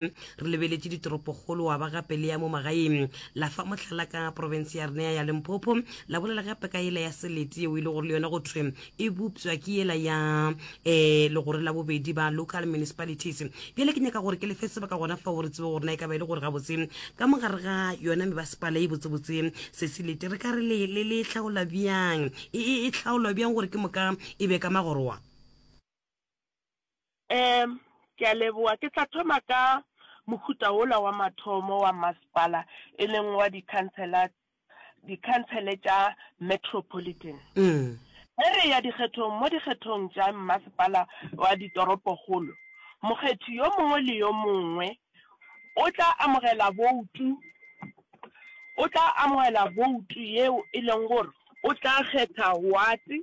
re lebeletše ditoropokgolo wa ba gape le ya mo magaeng la fa mohlala ka profense ya renea ya lemphopho la bolela gape ka yela ya selete yeo e le gore le yona go thwe e bopswa ke yela ya um eh, legore la bobedi ba local municipalities bjale ke nyaka gore ke lefe sebaka gona fao re tsebe gore na e ka ba e le gore gabotse ka mogare ga yona mebasepala e botsebotse se selete re ka re le le le hlaola bjang e, e, e hlaolwa bjang gore ke moka e be ka magoroa Ehm, ke a leboga. Ke tla thoma ka mohuta wola wa mathomo wa masepala, e leng wa dikhansela, dikhansele tša metropolitan. Ge re eya dikgethong, mo dikgethong tša mmasepala wa ditoropokgolo, mokgethi yo mongwe le yo mongwe o tla amogela boutu, o tla amogela boutu yeo e leng gore o tla kgetha wate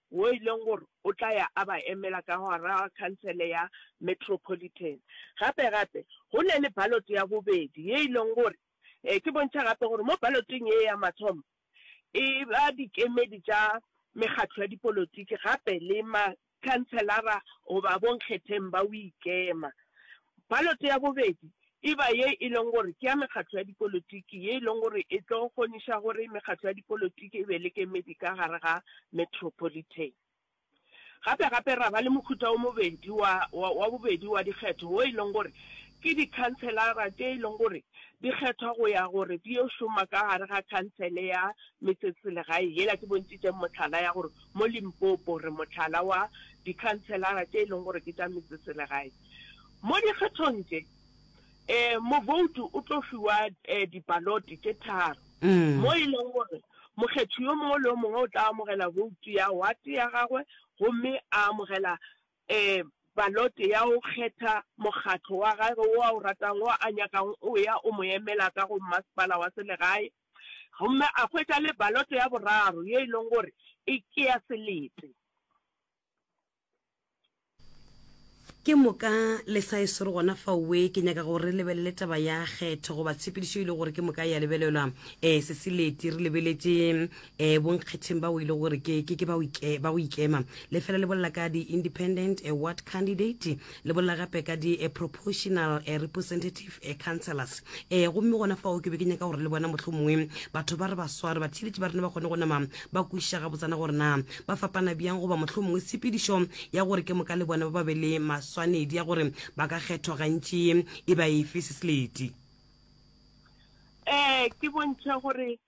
woo e leng gore o tla ya a ba emela ka gare ga khansele ya metropolitan. Gape-gape, go na le balote ya bobedi ye e leng gore e ke bontšha gape gore mo baloteng ye ya mathomo e ba dikemedi tša mekgatlo ya dipolotiki gape le makhanselara goba bonkgetheng ba go ikema. Balote ya bobedi e ba ye e lego gore ke ya mekgatlo ya dipolotiki, ye e lego gore e tlo kgoniša gore mekgatlo ya dipolotiki e be le kemedi ka gare ga metropolitan. Gape-gape ra ba le mohuta o mobedi wa, wa, wa bobedi wa dikgetho, wo e lego gore ke dikhanselara tše e lego gore di kgethwa go ya gore di yo šoma ka gare ga khansele ya metseselegae, yela ke bontšitšeng mohlala ya gore mo Limpopo re mohlala wa dikhanselara tše e lego gore ke tša metseselegae. Mo dikgethong tše, um moboutu o tlo fiwa um dibalote tše tharo, mo e lego gore mokgethi yo mongwe le yo mongwe o tla amogela boutu ya wate ya gagwe gomme a amogela um balote ya go kgetha mokgatlo wa gage wo a o ratang, wo a nyakago o ya o mo emela ka go mmasepala wa selegae, gomme a hwetša le balote ya boraro ye e lego gore e ke ya selete. Ke moka le sa e swere gona fao we, ke nyaka gore re lebelele taba ya kgetho goba tshepedišo e le gore ke moka ya lebelelwa. Eh, se se leti, re lebeletše eh bonkgetheng bao e le gore ke, ke, ke ba go ikema. Le fela le bolela ka di-independent eh ward candidate. Le bolela gape ka di eh, proportional eh, representative eh, councillors eh, gomme gona fao ke be ke nyaka gore le bona motlho mongwe batho ba re ba sware batheeletši ba rena ba kgone go nama ba kwešiša ga botsana gore na ba fapana bjang goba motlho mongwe tshepedišo ya gore ke moka le bona ba ba be le maswanedi ya gore ba ka kgethwa gantši e ba efe se seleti um ke bontšha gore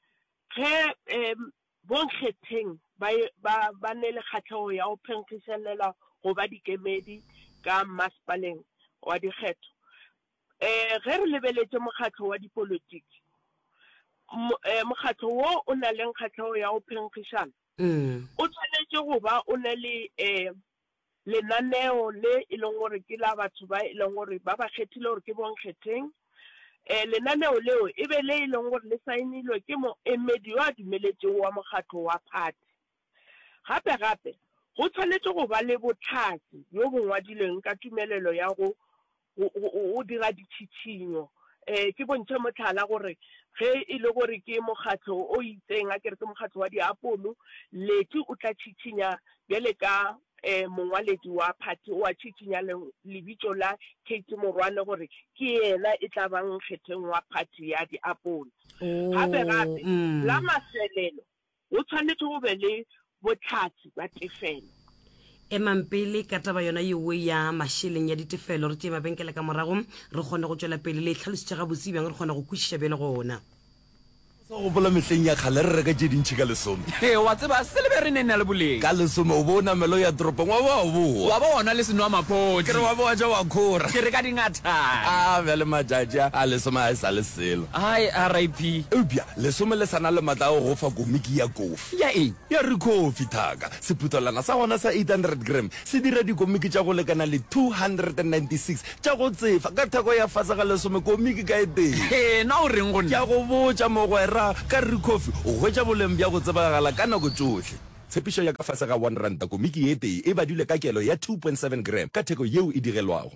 ge um Bonkgetheng ba ba ba ne le kgahlego ya go phenkgišanelwa go ba dikemedi ka Mmasepaleng wa Dikgetho. Ge re lebeletše mokgatlo wa dipolotiki, mo mokgatlo wo o na le kgahlego ya go phenkgišana o swanetše go ba o na le lenaneo le e leng gore ke la batho ba e leng gore ba ba kgethile gore ke bonkgetheng. Lenaneo leo e be le e leng gore le saenilwe ke moemedi yo a dumeletšego wa mokgatlo wa phathi. Gape-gape, go tshwanetše go ba le bohlatse bjo bo ngwadilweng ka tumelelo ya go go, go, go dira ditšhitšhinyo. E, ke bontšhe mohlala gore ge e le gore ke mokgatlo o itseng, a ke re ke mokgatlo wa diapolo, Letty o tla tšhitšhinya bjale ka e, mongwaledi wa phathi o a tšhitšhinya le, lebitšo la Kate Morwane gore ke yena e tla bang nkgetheng wa phathi ya diapolo. Oo, Gape-gape, la mm. mafelelo, Go tshwanetše go be le bohlatse bja tefelo. Emang pele ka taba yona yeoe ya mašeleng ya ditefelo, re tšee mabenkele ka morago, re kgone go tšwela pele. Le e hlalositše gabotse bjang? Re kgona go kwešiša bjalo gona. Sa gopola mehleng ya kgale re reka tše dintši ka lesome. Hee, wa tseba, silebere e ne e na le boleng. Ka lesome o be o namela o ya toropong, wa ba wa boa. Wa ba wa nwa le senwamaphodi. Ke re, wa ba wa ja wa khora. Ke re, ka dingatana. Aa, bjale matšatši a, a lesome a e sa le selo. Hai, RIP. Eupša Lesome le sa na le matla a go go fa komiki ya kofi. Ya eng? Ya Rikhofi Thaka. Sephuthelwana sa gona sa 800 gram se dira dikomiki tša go lekana le 296 tša go tsefa ka theko ya fase ga lesome komiki ka e tee. Hee, na o reng go nna? Ke a go botša, mogwera, ka Rikhofi o hwetša boleng bja go tsebagala ka nako tšohle. Tshepišo ya ka fase ga one ranta komiki ye tee e badilwe ka kelo ya 2.7 gram ka theko yeo e digelwago.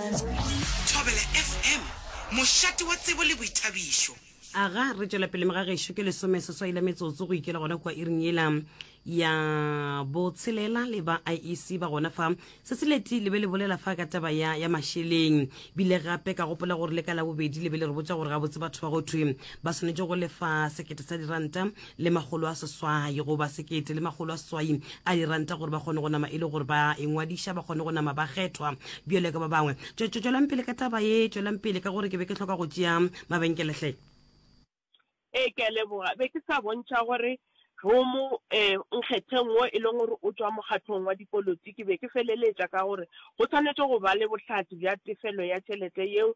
Thobela FM, mošate wa tsebo le boithabišo. Aga re tšwela pele mga gešo ke lesome seswai la metsotso go ikela gona kua iring yela ya botshelela le ba IEC ba gona fa se se leti le be le bolela fa ka taba ya ya mašeleng bile gape ka gopola gore le ka la bobedi le be le re botša gore gabotse batho ba go thwe ba swanetše go lefa sekete sa diranta le makgolo a seswai goba sekete le makgolo a seswai a diranta gore ba kgone go nama e le gore ba engwadiša ba kgone go nama ba kgethwa bjale ka ba bangwe tswelang pele ka taba ye tswelang pele ka gore ke be ke hloka go tšea mabenkelehle ee ke a leboga be ke sa bontšha gore romo um eh, nkgetheng wo e leng gore o tswa mokgatlhong wa dipolotiki be ke feleletša ka gore go tshwanetse go ba le bohlatsi bja tefelo ya tšhelete yeo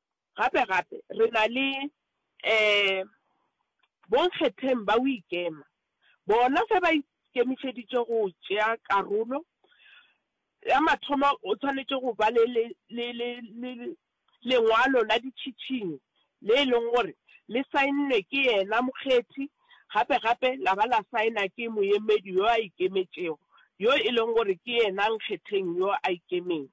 Gape gape re na le um bonkgetheng ba boikema, bona fe ba ikemišeditše go tšea karolo. Ya mathomo o swanetše go ba le lengwalo la ditšhišinyo le e lego gore le saennwe ke yena mokgethi gape gape la ba la saena ke moemedi yo a ikemetšego yo e lego gore ke yena nkgetheng yo a ikemeng.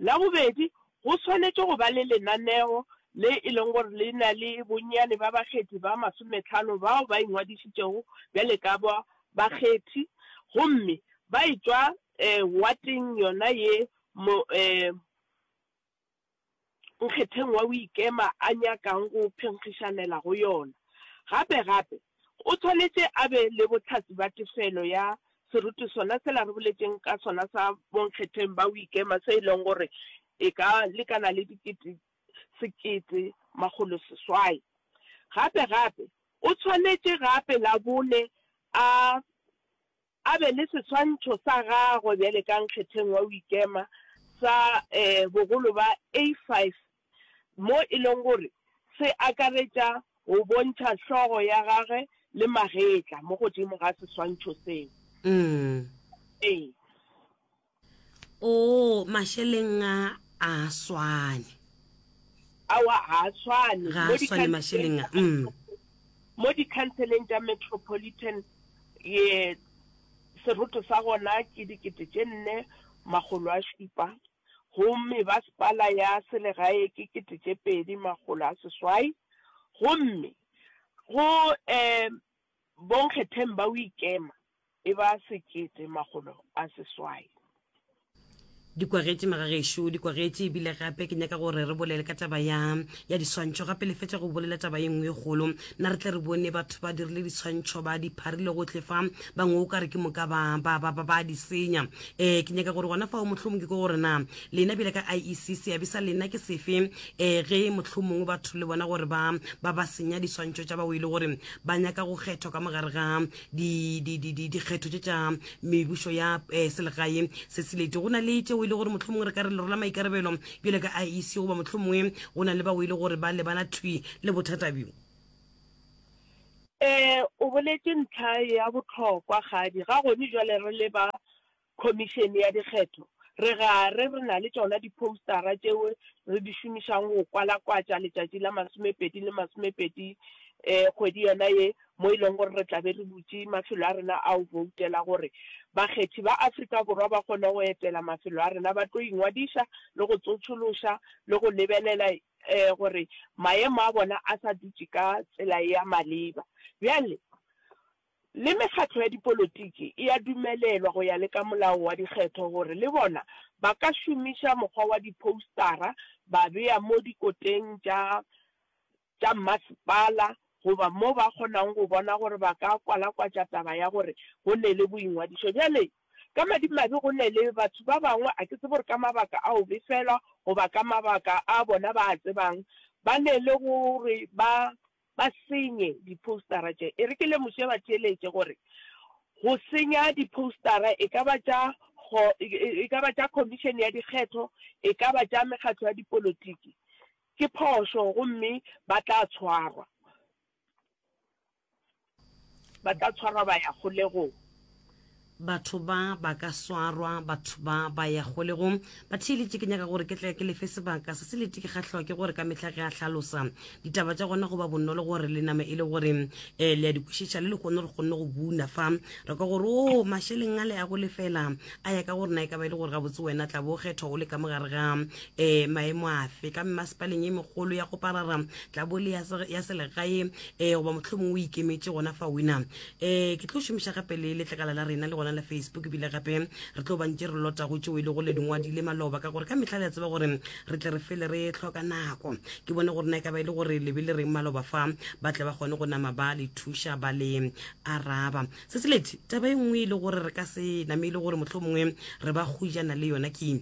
La bobedi, go swanetše go ba le lenaneo le e lego gore le na le bonnyane ba bakgethi ba masometlhano bao ba ingwadišitšego bjale ka ba bakgethi gomme ba etšwa um wateng yona ye mo um nkgetheng wa boikema a nyakang go phenkgišanela go yona. Gape-gape, o swanetše a be le bohlatse bja tefelo ya seruti sona sela re boletšeng ka sona sa bonkgetheng ba boikema se e lego gore e ka lekana le dikete sekete makgolo seswai. Gape-gape, o swanetše gape la bone a a be le seswantšho sa gagwe bjale ka nkgetheng wa go ikema sa bogolo ba A5, mo e lego gore se akaretša go bontšha hlogo ya gagwe le magetla mo godimo ga seswantšho seo. Ee. Oo, mašeleng a a swane. Awa, ga a swane. Ga a swane mašeleng a. Mm. Mo dikhanseleng tša metropolitan ye seroto sa gona ke dikete tše nne makgolo a šupa gomme basepala ya selegae ke kete tše pedi makgolo a seswai gomme go um Bonkgetheng ba Uikema e ba sekete makgolo a seswai. Di kwagetše maga gešo, di kwagetše, e bile gape ke nyaka gore re bolele ka taba ya, ya diswantšho gape. Le fetša go bolela taba ye nngwe ye kgolo, nna re tle re bone batho ba dirile diswantšho, ba di pharile gohle fa, bangwe o ka re ke moka ba, ba, ba, ba, ba di senya. Ee, ke nyaka gore gona fao, mohlomongwe ke gore na lena bjale ka IEC, seabe sa lena ke sefe, ee, ge mohlomongwe batho le bona gore ba, ba, ba senya diswantšho tša bao e le gore ba nyaka go kgethwa ka mogare ga dikgetho tše tša mebušo ya um selegae se selete go na le tšeo e le gore motlho mongwe re ka re lero la maikarabelo bjale ka iec goba motlho mongwe go na le bao e le gore ba lebana thwi le bothata bjo um o boletše ntlha ya botlhokwa gadi ga gone jale re leba Khomišene ya Dikgetho, re gare re na le tšona diphoustara tšeo re di šomišago go kwalakwatša letšatši la masomepedi le masomepedi kgwedi yona ye mo e lego gore re tla be re butše mafelo a rena a go boutela gore bakgethi ba Afrika Borwa ba kgone go etela mafelo a rena ba tlo ingwadiša le go tsotšološa le go lebelela gore maemo a bona a sa dutše ka tsela ya maleba. Bjale Le mekgatlo ya dipolotiki e a dumelelwa go ya le ka molao wa dikgetho gore le bona ba ka šomiša mokgwa wa diphoustara ba bea mo dikoteng tša tša mmasepala goba mo ba kgonago go bona gore ba ka kwalakwatša taba ya gore go ne le boingwadišo. Bjale, ka madimabe go ne le batho ba bangwe, a ke tsebe gore ka mabaka a go befelwa goba ka mabaka a bona ba a tsebang, ba ne le go re ba ba senye diphoustara tše. E re ke lemoše batheeletše gore go senya diphoustara e ka ba tša kgo, e ka ba tša Khomišene ya Dikgetho, e ka ba tša mekgatlo ya dipolotiki, ke phošo gomme ba tla tshwarwa. Ba tla tshwarwa ba ya kgolegong. Batho ba ba ka swarwa. Batho ba ba ya kgolegong. Batheeletši, ke nyaka gore ke tle ke le fe sebaka se se lete. Ke kgahlwa ke gore ka mehla ge a hlalosa ditaba tša gona go ba bonolo gore le name e le gore um le a di kwešiša le lekgono re kgonne go buna fa re kwa gore o oh, mašeleng a le a go lefela a ya ka gore na e ka ba e le gore gabotse wena tla bo kgethwa o le ka mogare ga um maemo afe ka mmasepaleng e megolo ya go parara tla bo le ya selegae um goba mohlomong o ikemetše gona fa wena um ke tlo šomiša gape le letlakala la rena le gona la facebook ebile gape re tlo bantše re lotago tšeo e le go le dingwadile maloba ka gore ka mehla le a tseba gore re tle re fele re tlhoka nako ke bone gore na e ka ba e le gore le be le reng maloba fa ba tle ba kgone go nama ba le thuša ba le araba se se lete taba e nngwe e le gore re ka se name e le gore mohlomongwe re ba go jana le yona ke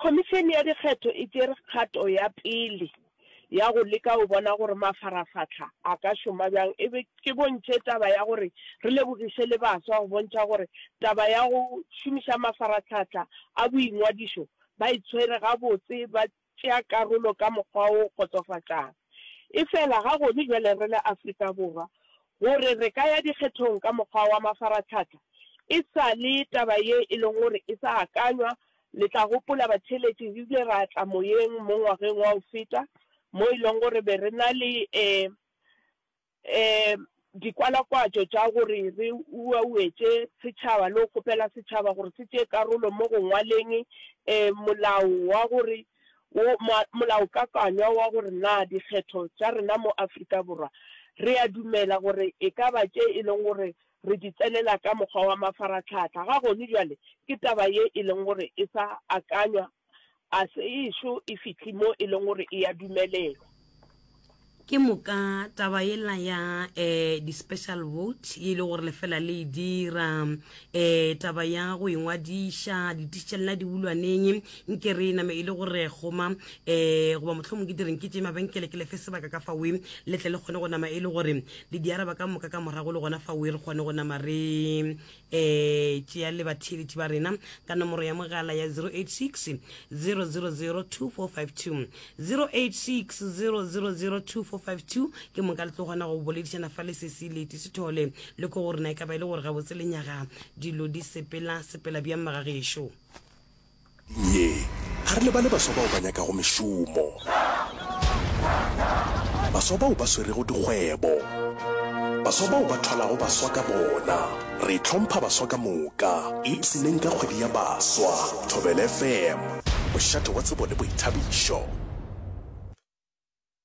Khomišene ya Dikgetho e tšere kgato ya pele ya go leka go bona gore mafarafahla a ka šoma bjang e be ke bontšhe taba ya gore re lebogiše le baswa go bontšha gore taba ya go šomiša mafaratlhahla a boingwadišo ba e tshwere gabotse ba tšea karolo ka mokgwa o kgotsofatšang. Efela ga gone bjale re le Afrika Borwa, gore re ka ya dikgethong ka mokgwa wa mafaratlhahla e sa le taba ye e leng gore e sa akanywa Le tla gopola, batheeletši, re ile ra tla moyeng mo ngwageng wa go feta, mo e lego gore be re na le dikwalakwatšo tša gore re uauetše setšhaba le go kgopela setšhaba gore se tšee karolo mo go ngwaleng molao wa gore, wo, molaokakanywa wa gore na dikgetho tša rena mo Afrika Borwa re a dumela gore e ka ba tše e lego gore Re di tsenela ka mokgwa wa mafaratlhatlha ga gone bjale, ke taba ye e leng gore e sa akanywa, a se ešo e fihle mo e leng gore e ya dumelelwa. Ke moka taba yela ya eh, di-special vote ye e le gore lefela le e dira, eh, taba ya go engwadiša dititšelela dibulwaneng nke re e name e le gore goma, eh, goba mohlomong ke direng ke tše mabenkele ke lefe sebaka ka fawe le tle le kgone go nama e le gore le di araba ka moka ka morago le gona fa oe re kgone go nama re um tšea le batheeletši ba rena ka nomoro ya mogala ya 086 000 2452 086 000 2452 ke moka le tlo kgona go boledišana fa le sesi leti sethole le ko go rena e ka ba e le gore gabotse lenyaga dilo di sepela sepela bjang magagešo Ye, ga re lebale baswa bao ba nyakago mešomo, baswa bao ba swerego dikgwebo, baswa bao ba thwalago baswa ka bona. Re hlompha baswa ka moka. Ipshineng ka kgwedi ya baswa. Thobela FM, mošate wa tsebo le boithabišo.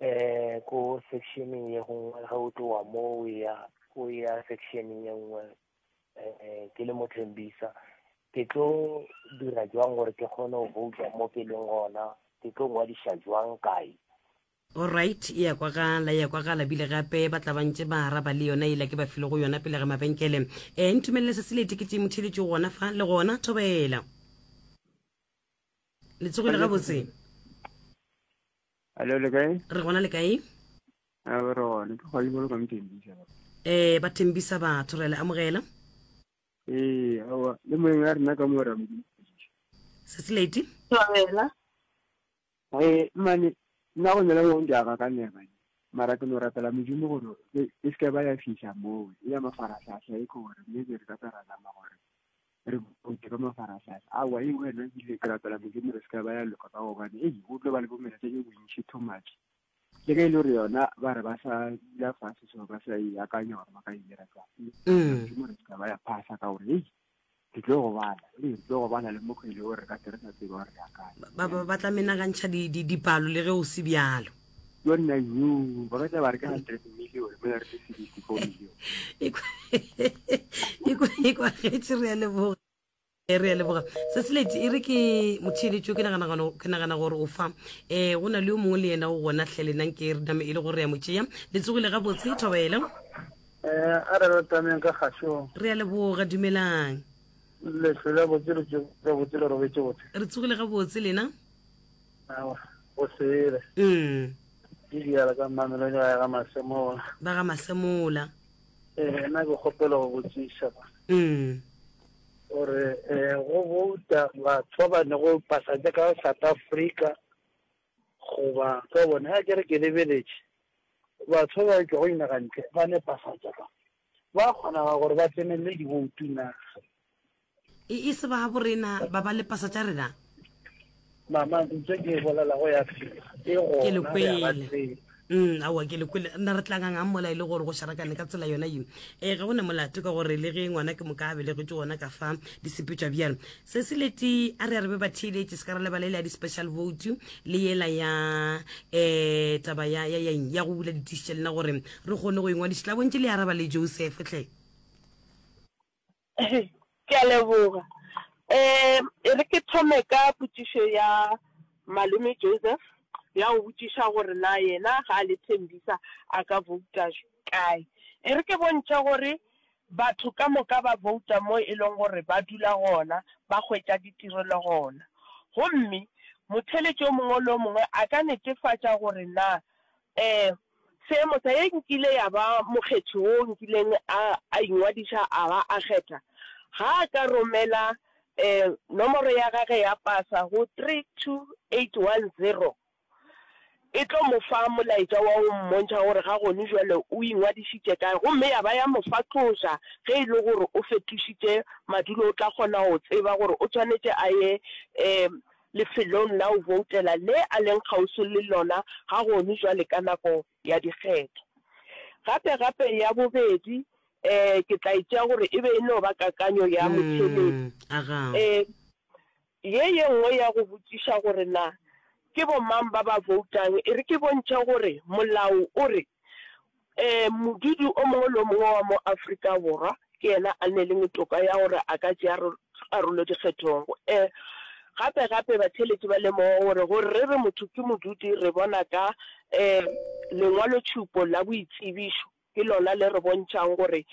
Eh, ko sectioneng ye gongwe ge o tlowa mo o ya o ya sectioneng ye nngwe eh ke le mothembisa ke tlo dira jwang gore ke kgone go bouta mo ke leng gona ke tlo ngwadiša jwang kae Alright, e ya kwagala, e ya kwagala bile gape ba tla bantše ba araba le yona yela ke ba file go yona pele ga mabenkele. Eh, ntumelele se se le tiketše motheeletšo gona fa, le gona, thobela. Le tsogile gabotse? Hello, le kae? Re gona le kae? A re gone, ke kgwadi bolo ka mthembisa. Eh, ba thembisa batho re le amogela. Eh, awa, le moeng a rena ka mo ra mo. Sesi lady. Tswela. Eh, mane nna go nela mo ntja ga ka nne ba. Mara ke no rapela modimo gore e se ka ba ya fihla moo. Ya mafaratlhatlha e gore mme ke re ka tsara nama gore. re bote ka mafaratlhatlha aowa e wena ebile ke rapela modimo re se ka ba ya loka ka gobane ei o tlo ba le bomeletse e bontšhi too much le ge e le gore yona ba re ba sa dula fase so ba sa e akanya gore ba ka e dira jang mm. modimo re se ka ba ya phasa ka gore ei ke tlo go bala ee ke tlo go bala le mokgwele o re ka tere sa tsebe gore re akanya ba tla menagantšha dipalo le ge o se bjalo yona yo ba batla ba re ka 100 million mo ya re le 64 million e kwa getse re ya leboga re ya leboga se se leti e re ke motheeletso ke nagana gano ke nagana gore o fa eh go na le yo mongwe le yena o gona tlhele nang ke re dame e le gore ya motšea le tsogile ga botse thobela eh a re re tameng ka gaso re ya leboga dumelang le hlola botse re tsogile ga botse le robetse botse re tsogile ga botse lena o sele mm ke diala ka mmamelo le ga ga masemola ba ga masemola eh na ke kgopela go botsisa ba mm gore eh go bouta batho ba ne go pasa ja ka South Africa goba ka bone a kere ke lebeletse batho ba tlo go inaga ntle ba ne pasa ja ka Go a kgonaga gore ba tsenelele diboutu na? E, e se babo rena ba ba lepasa tša rena? Mama, ntso ke e bolela go ya fela. E gona, Ke le re a ba kwele. tseba. Mm, aowa ke le kwele. Nna re tlangang a mola e le gore go šarakane ka tsela yona ye. E, ga go na molato ka gore le ge ngwana ke moka a belegetšwe gona ka fa di sepetšwa bjalo. Se se leti a re a re be ba theeletše se ka ra lebala e le ya di-special vote le yela ya eh taba ya ya ya eng ya go bula ditiši tša lena gore Re kgone go ingwadiša. Tla bontši le araba le Joseph hle. Ke a leboga. Eh, e re ke thome ka potšišo ya Malome Joseph, ya go botšiša gore na yena ga a le Thembisa a ka vouta kae. E re ke bontšhe gore batho ka moka ba vouta mo e leng gore ba dula gona, ba hwetša ditirelo gona. Gomme motheeletši o mongwe le o mongwe a ka netefatša gore na eh, Se motha ye nkile ya ba mokgethi wo nkileng a a ingwadiša a ba a kgetha ga a ka romela eh, nomoro ya gage ya pasa go 32810 e tlo mo fa molaetša wa go mmontšha gore ga gone jwale o ingwadišitše kae gomme ya ba ya mo fa tloša ge e le gore o fetošitše madulo o tla kgona go tseba gore o tshwanetše a ye um lefelong la go boutela le a leng kgauswi le lona ga gonu jwale ka nako ya dikgetho. Gape, gape ya bobedi, ee, ke tla e tšea gore e be e no ba kakanyo ya motheledi. Ee, ye ye nngwe ya go botšiša gore na ke bomang ba ba boutang e re ke bontšhe gore molao o re Ee, modudi o mongwe le o mongwe wa mo Afrika Borwa ke yena a neleng toka ya gore a ka tšea karolo dikgethong. Ee, gape-gape batheeletši ba lemoga gore gore re re motho ke modudi re bona ka ee lengwalotšhupo la boitsebišo, ke lona le re bontšhang gore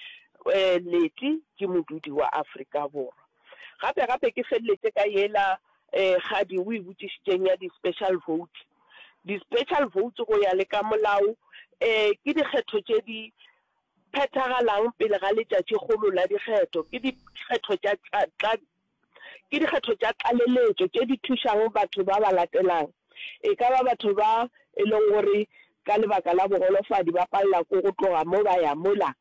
ee Letty ke modudi wa Afrika Borwa. Gape-gape ke feleletše ka yela ee kgadi o e botšišitšeng ya di-special vote. Di-special votes go ya le ka molao ke dikgetho tše di phethagalang pele ga letšatšikgolo la dikgetho. Ke dikgetho tša tla ke dikgetho tša tlaleletšo tše di thušago batho ba ba latelang. E ka ba batho ba e leng gore ka lebaka la bogolofadi ba palela ko go tloga mo ba ya mola.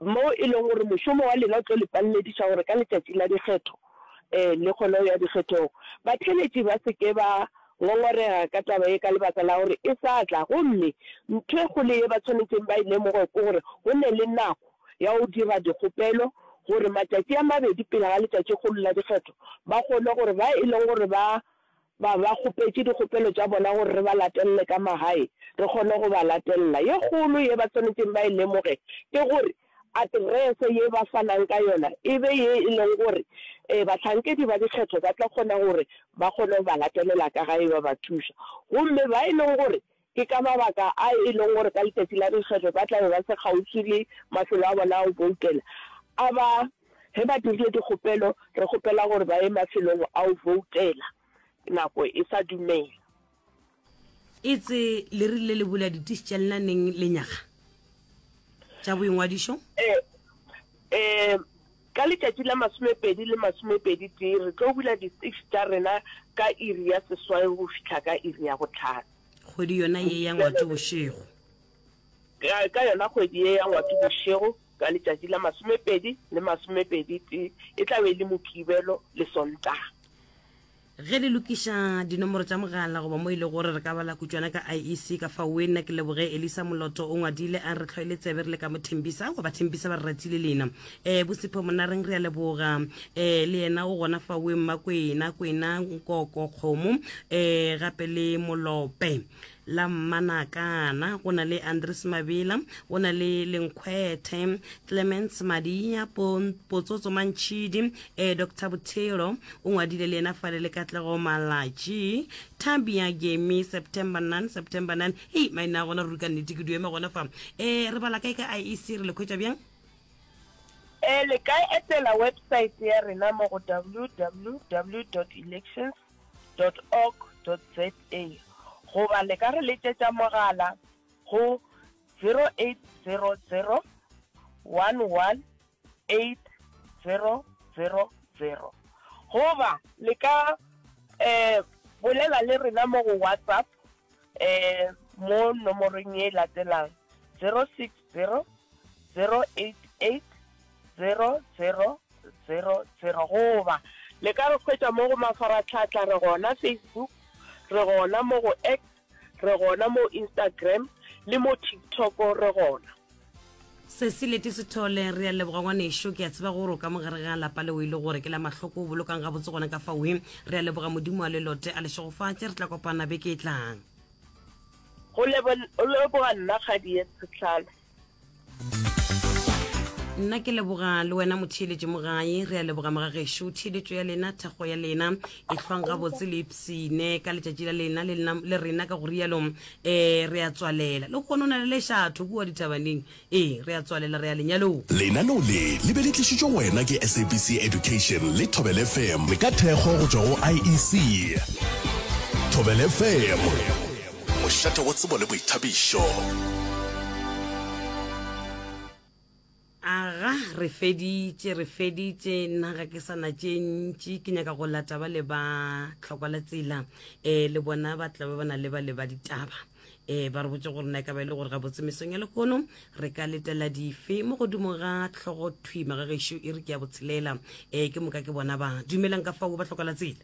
Mo e lego gore mošomo wa lena o tlo le palelediša gore ka letšatši la dikgetho, ee, le kgone go ya dikgethong. Batheeletši ba se ke ba ngongorega ka taba ye ka lebaka la gore e sa tla. Gomme ntho e kgolo ye ba swanetšeng ba e lemoge ke gore go ne le nako ya go dira dikgopelo gore matšatši a mabedi pele ga letšatšikgolo la dikgetho ba kgone gore ba e lego gore ba ba ba kgopetše dikgopelo tša bona gore re ba latelele ka magae re kgone go ba latelela. Ye kgolo ye ba swanetšeng ba e lemoge ke gore aterese ye ba fanang ka yona e be ye e lego gore bahlankedi ba dikgetho ba tla kgona gore ba kgone go ba latelela ka gae ba ba thuša gomme ba e lego gore Ke ka mabaka a e lego gore ka letšatši la dikgetho ba tla be ba se kgauswi le mafelo a bona a go boutela a ba ge ba dirile dikgopelo, re kgopela gore ba ye mafelong a go boutela nako e sa dumela. Etse le rile le bula ditistšella neng lenyaga tša boingwadišo? Ee, ee, ka letšatši la masomepedi le masomepedi-tee re tlo bula ditistš tša rena ka iri ya seswai go fihla ka iri ya bohlano. Kgwedi yona ye ya Ngwati bošego. Ka, ka yona kgwedi ye ya Ngwati bošego, ka letšatši la masomepedi le masomepedi-tee, e tla be e le Mokibelo le Sontaga. Ge le lokiša dinomoro tša mogala goba mo e lego gore re ka bala kutšwana ka IEC ka fao, we nna ke leboge Elisa Moloto o ngwadile a re, Re tlhoile tsebe re le ka mo Tembisa, goba Tembisa ba re ratile leina. eh bosipho monareng re a leboga eh le yena o gona fa we mma kwena kwena nkoko kgomo eh gape le molope la mmanakana go na le andres mabela go na le lenkgwethe clemens madia Pon- potsotso mantšhidi eh dr bothelo o ngwadile le yena fale le katlego malatši tabia gemi september 9 september 9 hei maina a gona ruri ka nnete ke dueme gona fa eh re bala kae ka iec re le khwetša bjang E, le ka etela websaete ya rena mo go www dot elections dot org dot za goba le ka re letšetša mogala go 0800 11 8000 goba le ka um bolela le rena mo go WhatsApp um mo nomorong ye e latelang 06 zero, zero eight eight, zero zero, zero zero, goba le ka re hwetša mo go mafaratlhatlha re gona Facebook, re gona mo go X, re gona mo Instagram le mo TikTok re gona. Sesi Leti Sithole, Re a leboga ngwanešu, ke a tseba gore o ka mo gare ga lapa leo e le gore ke la mahloko, o bolokang gabotse gona ka fawe. Re a leboga, Modimo a le lote a le šegofatše, re tla kopana beke e tlang. Go leboga nna kgadi ye tshetlhalo. Nna ke leboga le wena motheeletši mogae re a leboga mogagešo theeletšo ya lena thakgo ya lena e hlwang gabotse le ipsine ka letšatši la lena le rena ka go rialo um re a tswalela le gone o na le lešatho kua dithabaneng Ee, re a tswalela, re ya lenyalong. Lenaneo le le be le tlišitšwe go wena ke SABC Education le Thobela FM. Le ka thekgo go tšwa go IEC. Thobela FM, mošate wa tsebo le boithabišo. Aga, re feditše, re feditše, nna ga ke sa na tše ntši, ke nyaka go lata ba le ba tlhokwa la tsela, eh, le bona ba tlabe ba na le ba le ba ditaba. e ba re botse gore na e ka ba e le gore ga botse mesong ya lehono re ka letela dife mo godimo ga tlhogo thwima ga gešo e re ke ya botshelela e ke moka ke bona ba dumelang ka fao ba tlhoka la tsela